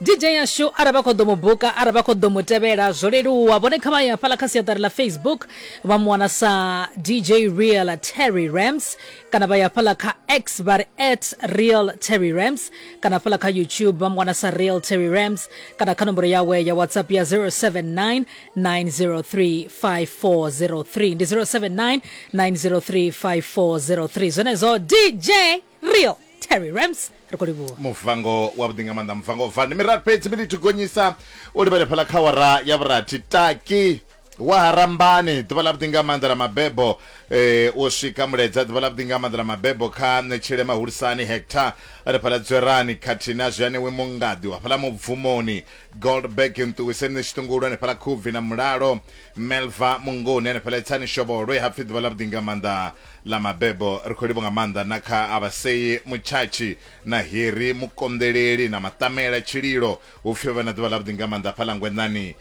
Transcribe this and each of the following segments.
DJ yashu arali vha khou ḓo mu buka arali vha khou ḓo mu tevhela zwo leluwa vhone kha vha ye hafhaḽa kha siaṱari ḽa facebook vha mu wana sa dj real terry rams kana vha ya hafhaḽa kha x vha ri at real terry rams kana hafhaḽa kha youtube vha mu wana sa real terry rams kana kha nomboro yawe ya whatsapp ya 079 903 5403 ndi 079 903 5403 zwenezwo dj rio terry rams ri khou livhuwa muvango wa vhuḓi nga maanḓa muvango van ndi miraru fhedzi mili thi gonyisa u livhele fhala kha wara ya vhurathi taki wa harambani ḓuvha ḽa vhuḓi nga maanḓa ḽa mabebo eh, u swika muledza ḓuvha ḽa vhuḓi nga maanḓa ḽa mabebo kha ṋetshele mahulisani hectar ri fhala dzwerani khathihi na zwianewe mungadi wa fhala mubvumoni goldberg nṱuwiseni ni tshiṱungulu hanefhala khubvi na mulalo melva mungoni hanefhala itsani shovolwe hapfi ḓuvha ḽa vhuḓi nga maanḓa Ḽa mabebo, ri khou livho nga maanḓa na kha Avasei Mutshatshi na Heri Mukonḓeleli na Maṱamela Tshililo, hu pfi vho vha na ḓuvha ḽavhuḓi nga maanḓa hafhaḽa Ngwenḓani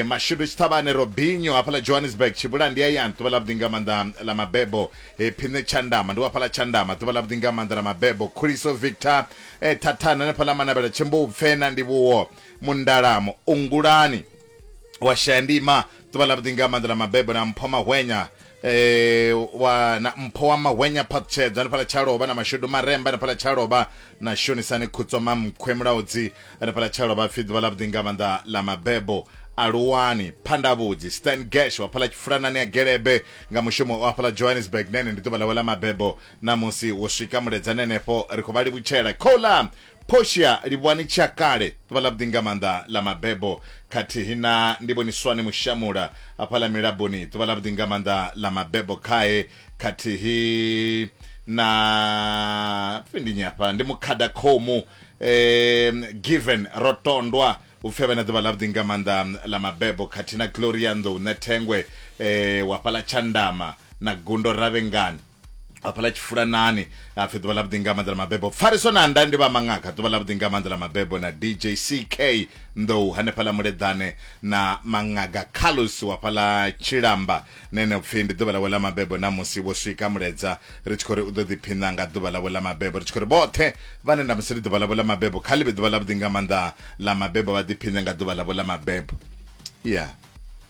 Mashudu Tshiṱhavhane Robinho hafhaḽa Johannesburg Tshibula ndi hayani ḓuvha ḽavhuḓi nga maanḓa ḽa mabebo Phiṋe Tshandama ndi wa hafhaḽa Tshandama ḓuvha ḽavhuḓi nga maanḓa ḽa mabebo Khuliso Victor Thathani hanefhaḽa Manavhela Tshimbupfe na Ndivhuwo Mundala Muungulani wa shaya ndima ḓuvha ḽavhuḓi nga maanḓa ḽa mabebo na mpho mahwenya eh wa na mpho wa mahwenya phaṱutshedza hanefhaḽa tshalovha na mashudu maremba hanefhaḽa tshalovha na shonisani khutswa mamkhwe mulaudzi hanefhaḽa tshalovha pfhi ḓuvha ḽavhuḓi nga maanḓa ḽa mabebo aluwani phandavhudzi stan gash wa fhaḽa tshifulanani ya gelebe nga mushumo wa fhaḽa johannesburg nene ndi ḓuvha ḽawe ḽa mabebo na musi wo swika muledza nenefho ri khou vha livhutshela khola Portia Livhuwani Tshakale, ḓuvha ḽavhuḓi nga maanḓa ḽa mabebo, khathihi na Ndivhoniswani Mushamula hafha ḽa Milaboni, ḓuvha ḽavhuḓi nga maanḓa ḽa mabebo khae, khathihi na pfi ndi nnyi hafha, ndi Mukhada Khomu Given Rotondwa, hu pfi a vhe na ḓuvha ḽavhuḓi nga maanḓa ḽa mabebo, khathihi na Gloria Nḓou Ṋethengwe wa fhaḽa Tshandama na Gundo Ravhengani. hafhaḽa tshifulanani hapfi ḓuvha ḽa vhuḓi nga maanḓa ḽa mabebo pfariso na nda ndi vha maṅaka ḓuvha ḽa vhuḓi nga maanḓa ḽa mabebo na dj ck nḓou hanefhaḽa muleḓane na maṅaga carlos wa fhaḽa tshilamba nene upfhi ndi ḓuvha ḽawe ḽa mabebo na musi vho swika muledza ri tshi khou ri u ḓo ḓiphina nga ḓuvha ḽawe ḽa mabebo ri tshi khou ri vhoṱhe vhane nda musi ri ḓuvha ḽawe ḽa mabebo kha ḽivhe ḓuvha ḽa vhuḓi nga maanḓa ḽa mabebo vha ḓiphine nga ḓuvha ḽawe ḽa mabebo ya yeah.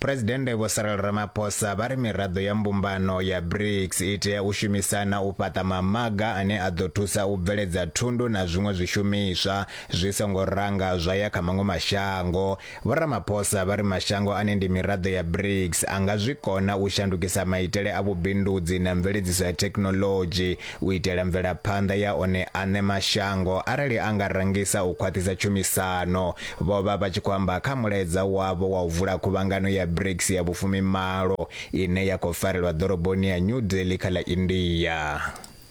Phresidennde Vho Cyril Ramaphosa vha ri miraḓo ya mbumbano ya BRICS i tea u shumisana u fhaṱa mamaga ane a ḓo thusa u bveledza thundu na zwiṅwe zwishumiswa zwi songo ranga zwa ya kha maṅwe mashango. Vho Ramaphosa vha ri mashango ane ndi miraḓo ya BRICS a nga zwi kona u shandukisa maitele a vhubindudzi na mveledziso ya thekhinoḽodzhi u itela mvelaphanḓa ya one aṋe mashango arali a nga rangisa u khwaṱhisa tshumisano, vho vha vha tshi khou amba kha mulaedza wavho wa u vula khuvhangano ya BRICS ya vhufumimalo ine ya khou farelwa ḓoroboni ya New Delhi kha ḽa India.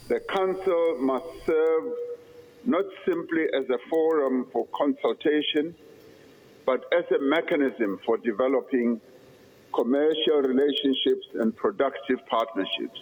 The Council must serve not simply as a forum for consultation but as a mechanism for developing commercial relationships and productive partnerships.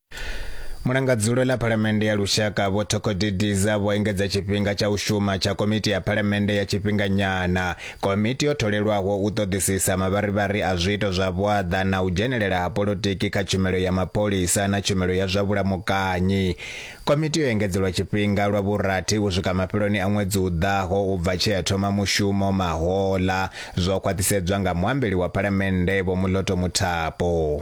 mulanga dzulo ḽa phalamennde ya lushaka vho thokodidiza vho engedza tshifhinga tsha u shuma tsha komiti ya phalamennde ya tshifhinganyana komiti yo tholelwaho u ṱoḓisisa mavharivhari a zwiito zwa vhuaḓa na u dzhenelela ha polotiki kha tshumelo ya mapholisa na tshumelo ya zwa vhulamukanyi komiti yo engedzelwa tshifhinga lwa vhurathi u swika mafheloni a ṅwedzi u ḓaho u bva tshea ya thoma mushumo mahola zwo khwaṱhisedzwa nga muambeli wa phalamennde vho muloto muthapo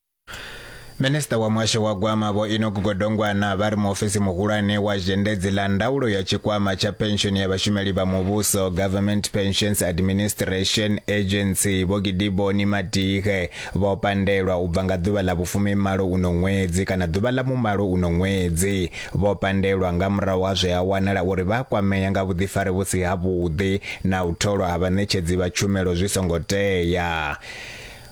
Minista wa muhasho wa gwama vho Enoch Godongwana vha ri muofisi muhulwane wa zhendedzi ḽa ndaulo ya tshikwama tsha penshoni ya vhashumeli vha muvhuso Government Pensions Administration Agency vho Gidiboni Madihe vho pandelwa u bva nga ḓuvha ḽa vhufumi malo uno ṅwedzi kana ḓuvha ḽa mumalo uno ṅwedzi vho pandelwa nga murahu ha zwe ha wanala uri vha kwamea nga vhuḓifari vhu si ha vhuḓi na u tholwa ha vhaṋetshedzi vha tshumelo zwi songo tea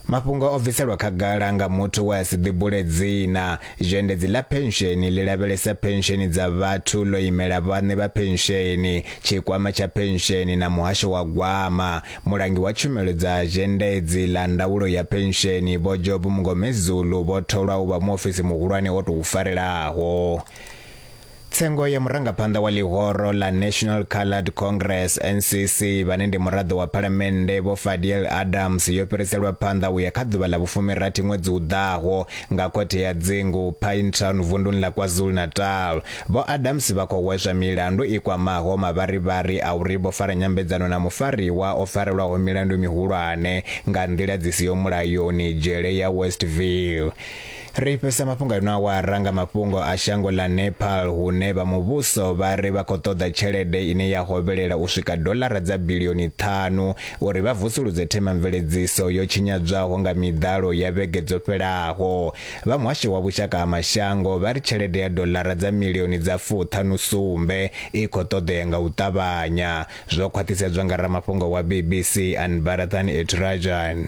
Mafhungo o bviselwa khagala nga muthu we a si ḓibule dzina. Zhendedzi ḽa Phensheni ḽi lavhelesa phensheni dza vhathu ḽo imela vhaṋe vha phensheni, Tshikwama tsha Phensheni na Muhasho wa Gwama. Mulangi wa Tshumelo dza Zhendedzi ḽa Ndaulo ya Phensheni, Vho Job Mngomezulu vho tholwa u vha muofisi muhulwane o tou farelaho. Tsengo ya murangaphanḓa wa ḽihoro ḽa National Coloured Congress, NCC, vhane ndi muraḓo wa Phalamennde Vho Fadiel Adams yo fhiriselwa phanḓa u ya kha ḓuvha ḽa vhufumirathi ṅwedzi u ḓaho nga khothe ya dzingu Pinetown vunduni ḽa KwaZulu-Natal. Vho Adams vha khou hweswa milandu i kwamaho mavharivhari a uri vho fara nyambedzano na mufariwa o farelwaho milandu mihulwane nga nḓila dzi siho mulayoni dzhele ya Westville. Ri fhisa mafhungo a ino awara nga mafhungo a shango ḽa Nepal hune vha muvhuso vha ri vha khou ṱoḓa tshelede ine ya hovhelela u swika doḽara dza bilioni ṱhanu uri vha vusuludze themamveledziso yo tshinyadzwaho nga miḓalo ya vhege dzo fhelaho. Vha muhasho wa vhushaka ha mashango vha ri tshelede ya doḽara dza milioni dza fuṱhanu sumbe i khou ṱoḓea nga u ṱavhanya, zwo khwaṱhisedzwa nga ramafhungo wa BBC Anbarathan Eturajan.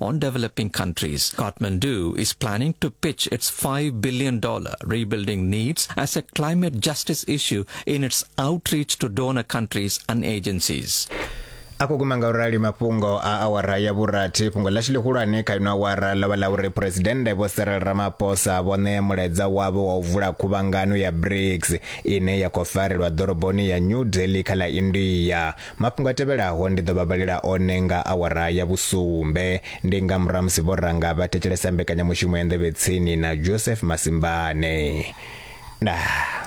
on developing countries. Kathmandu is planning to pitch its $5 billion rebuilding needs as a climate justice issue in its outreach to donor countries and agencies. akho kuma nga urali mafhungo a awara ya vhurathi fhungo ḽashu ḽihulwane kha ino awara ḽo vha ḽa uri phuresidennde vho serel ramaphosa vho ṋea mulaedza wavho wa u vula khuvhangano ya brics ine ya khou farelwa ḓoroboni ya new delhi kha ḽa india Mafhungo a tevhelaho ndi ḓo vha vhalela one nga awara ya vhusumbe. Ndi nga murahu ha musi vho ranga vha thetshelesa mbekanyamushumo ya Nḓevhe Tsini na Joseph Masimbane. Ndaa.